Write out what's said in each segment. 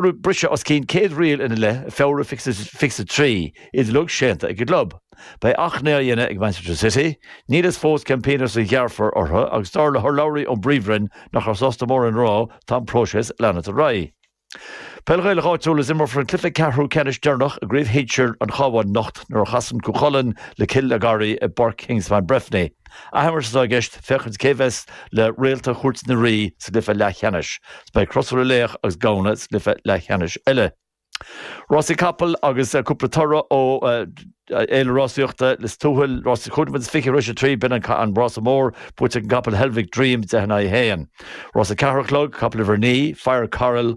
briseadh os cionn céad riail ina leith i Feabhra fiche's a trí, iad uilig séanta ag an gclub. Beidh achainí á dhéanamh ag Manchester City, níl fhios fós cén pionós a ghearrfar orthu agus dar le hurlabhraí ón bPríomhroinn nach raibh sásta mórán a rá tá an próiseas ag leanacht ar aghaidh. Peil Ghaelach Áitiúil Is imreofar an cluiche ceathrú ceannais deireanach i gCraobh Shinsir an Chabháin anocht nuair a chasann Cú Chulainn le Cill a' Gharraí i bPáirc Kingspan Breffni. Athimirt atá i gceist féachaint cé bheas le réalta Chúirt na Rí sa gcluiche leathcheannais. Beidh Crois ar Loch agus Gamhna sa gcluiche leathcheannais eile. Rásaí capall agus cúpla toradh ó fhéile rásaíochta Lios Tuathail. Rás a cúig nóiméad is fiche tar éis a trí, b'in an rása mór buaite ag an gcapall Helvic Dream deich in aghaidh a haon. Rás a ceathair a chlog, capall uimhir a naoi, Fire Coral,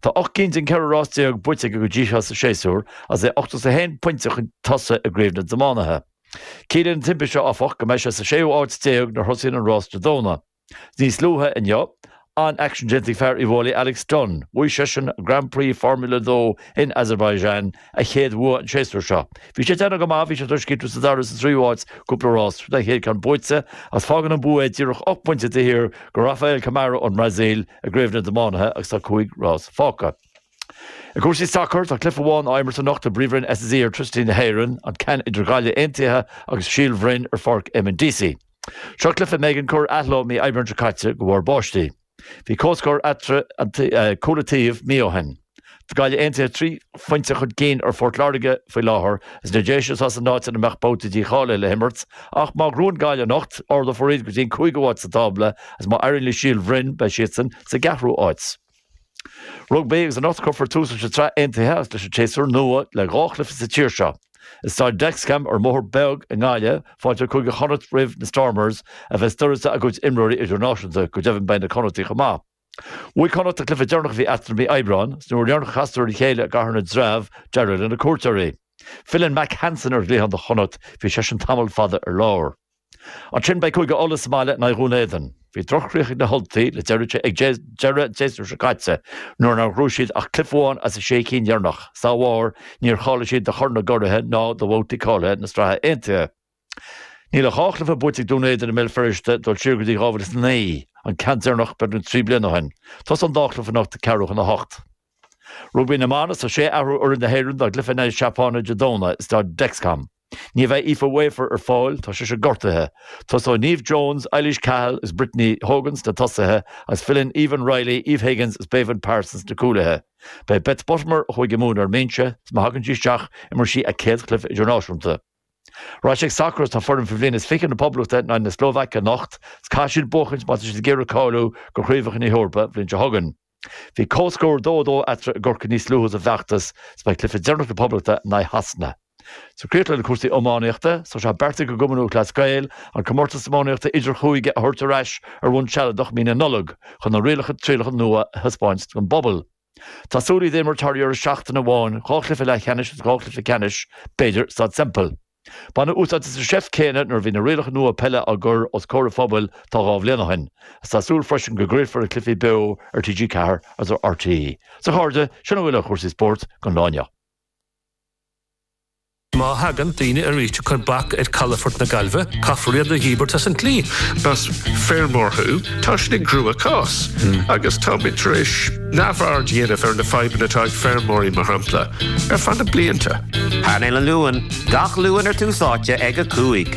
Tá 8 gcinn de cheithre rás déag buaite aige go dtí seo sa séasúr agus é 81 pointe chun tosaigh i gCraobh na dTiománaithe. Ciallaíonn an timpiste seo, áfach, go mbeidh sé sa séú áit déag nuair thosaíonn an rás Dé Domhnaigh. Níos luaithe inniu, an-aicsean déanta ag fear Uíbh Fhailí Alex Dunne, bhuaigh seisean, Grand Prix Formula 2 in Azerbaijan a chéad bhua an séasúr seo. Bhí sé ag déanamh go maith, bhí sé tar éis críochnú sa dara is sa tríú háit, cúpla rás roimh an chéad ceann buaite, agus fágann an bua é díreach ocht bpointe taobh thiar de Rafael Câmara ón mBrasaíl i gcraobh na dtiománaithe agus tá cúig rás fágtha. I gcúrsaí sacair, tá cluiche amháin á imirt anocht i bPríomhroinn SSE Airtricity na hÉireann, an ceann idir Gaillimh Aontaithe agus Síol Bhroin ar Pháirc Eamonn Deacy. Seo cluiche a mb'éigean a chur ar athló mí Aibreán seo caite de bharr báistí. Bhí comhscór eatarthu cúl an taobh mí ó shin. Tá Gaillimh Aontaithe trí phointe chun cinn ar Phort Láirge faoi láthair agus na Déise atá san áit ina mbeadh babhta dícháilithe le himirt ach má ghnóthaíonn Gaillimh anocht, ardófar iad go dtí an cúigiú háit sa tábla agus má éiríonn le Síol Bhroin, beidh siadsan sa gceathrú háit. Rugbaí, agus anocht cuirfear tús leis an tsraith aontaithe agus leis an tséasúr nua le dhá chluiche sa tír seo. I Staid Dexcom ar an mBóthar Beag i nGaillimh, fáilteoidh Cúige Chonnacht roimh na Stormers a bheas d'uireasa a gcuid imreoirí idirnáisiúnta, go deimhin beidh na Connachtaigh chomh maith. Bhuaigh Connacht an cluiche deireanach a bhí eatarthu mí Aibreáin, 's an uair dheireanach a chasadar ar a chéile i gCathair na dTreabh d'éirigh leis na cuairteoirí. Filleann Mack Hansen ar an gcliathán do Chonnacht, bhí seisean tamall fada ar lár. Ansin beidh Cúige Uladh sa mbaile in aghaidh Dhún Éideann. Bhí droch-chríoch ag na hUltaigh le deireadh an tséasúir seo caite nuair nár ghnóthaigh siad ach cluiche amháin as na sé cinn dheireanach. Dá bharr, níor cháiligh siad do Chorn na gCuraithe ná do bhabhtaí cáilithe na Sraithe Aontaithe. Níl ach dhá chluiche buaite ag Dún Éideann i mBéal Feirste, dul siar go dtí 2009, an ceann deireanach beagnach trí bliana ó shin. Tosaíonn an dá chluiche anocht ag ceathrú chun a hocht. Rugbaí na mBan Is 6 athrú ar fhoireann na hÉireann dá gcluiche in aghaidh na Seapáine Dé Domhnaigh i Staid Dexcom. Ní bheidh Aoife Wafer ar fáil, tá sise gortaithe. Tosóidh Neve Jones, Eilís Cahill is Brittney Hogan sna tosaithe agus filleann Aoibheann Reilly, Eve Higgins is Béibhinn Parsons sna cúlaithe. Beidh Beth Buttimer, ó Chúige Mumhan ar an mbinse, is má thagann sí isteach, imreoidh sí a céad chluiche idirnáisiúnta. Ar ais ag sacar Is tá foireann faoi bhliain is fiche na Poblachta in aghaidh na Slóvaice anocht is caithfidh siad buachaint má tá siad ag iarraidh cáiliú do Chraobhacha na hEorpa an bhliain seo chugainn. Bhí comhscór dó dó eatarthu i gCorcaigh níos luaithe sa bhfeachtas, is beidh cluiche deireanach na Poblachta in aghaidh Shasana. Is ag críochnú le cúrsaí iománaíochta, so tá sé beartaithe ag Cumann Lúthchleas Gael an comórtas iománaíochta idirchúige a thabhairt ar ais ar bhonn sealadach i mí na Nollag chun na rialacha trialacha nua a thaispeáint don bpobal. Tá súil iad a imirt thar dheireadh seachtaine amháin, dhá chluiche leathcheannais agus dhá chluiche ceannais b'fhéidir i Staid Semple. Baineadh úsáid as an seift céanna nuair a bhí na rialacha nua peile á gcur os comhair an phobail tá dhá bhliain ó shin. Tá súil freisin go gcraolfar na cluichí beo ar TG4 agus ar RTÉ. Sea a chairde, sin a bhfuil ar chúrsaí spóirt don lá inniu. Má thagann daoine arís ag cur bac ar calafort na Gaillmhe, caithfear iad a dhíbirt as an tslí. Más feirmeoir thú, tá sin i gcruachás, agus táimid tar éis. neamhaird a dhéanamh ar na fadhbanna atá ag feirmeoirí mar shampla, ar feadh na blianta. Painéal an Luain, gach Luan ar Tús Áite ag 5.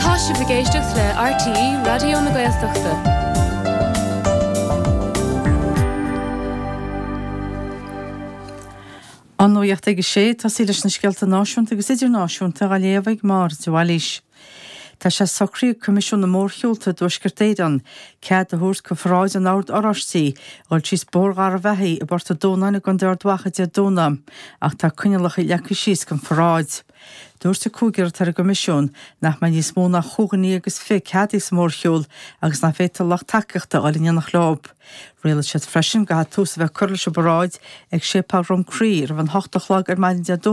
Tá sibh ag éisteacht le RTÉ Raidió na Gaeltachta. An Nuacht ag 6, ag tosaí leis na scéalta náisiúnta agus idirnáisiúnta á léamh ag Máire de Bhailís. Tá sé socraithe ag Coimisiún na Mórshiúlta i dTuaisceart Éireann cead a thabhairt do pharáid an Oird Oráistí a dhul síos Bóthar Gharbhachaidh i bPort a' Dúnáin i gContae Ard Mhacha Dé Domhnaigh ach tá coinniollacha leagtha síos don pharáid. Dúirt an cúigear atá ar an gCoimisiún nach mbeidh níos mó ná chúig dhuine agus fiche ceadaithe sa mhórshiúl agus nach bhféadfadh a lucht tacaíochta a dhul in éineacht leo. Rialaigh siad freisin go gcaithfeadh tús a bheith curtha leis an bparáid ag Séipéal Dhroim Crí roimh an hocht a chlog ar maidin Dé